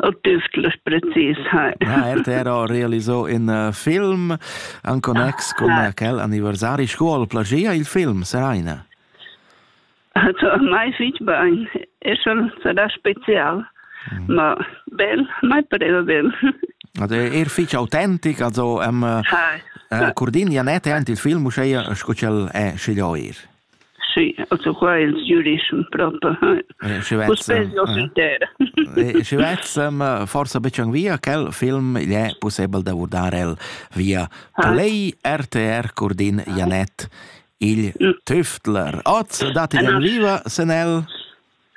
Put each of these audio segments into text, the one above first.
autüsclas precis. Ha RTR ha realisato un uh, film en connex con ah. quel anniversario scuola plagia il film Seraina. Also mai fitch bain. È schon sarà special. Mm. Ma bel, mai pareva bel. Also er fitch autentic, also am um, uh, Cordinia net è il film, uscei sco quel è sceglio er. Sì, also qua ils giurischem proper. Schi vezzam forsa betg via quel film il è pussebel da vurdar el via Play RTR Curdin Janet il Tüftler. Oz datti den viva senel.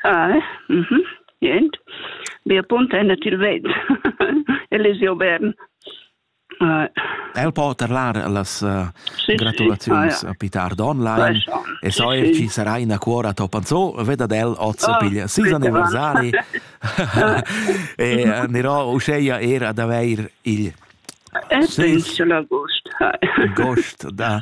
Ah, mhm. Jent. Wir punten til ved. Elisio Bern. El po terlar las uh, gratulaziuns a Peter Donline e so er chi sarà ina cuora topanzo veda del oz oh, piglia sis anniversari e uh, nero uscheia er ad aveir il Ed sis agost. Gost da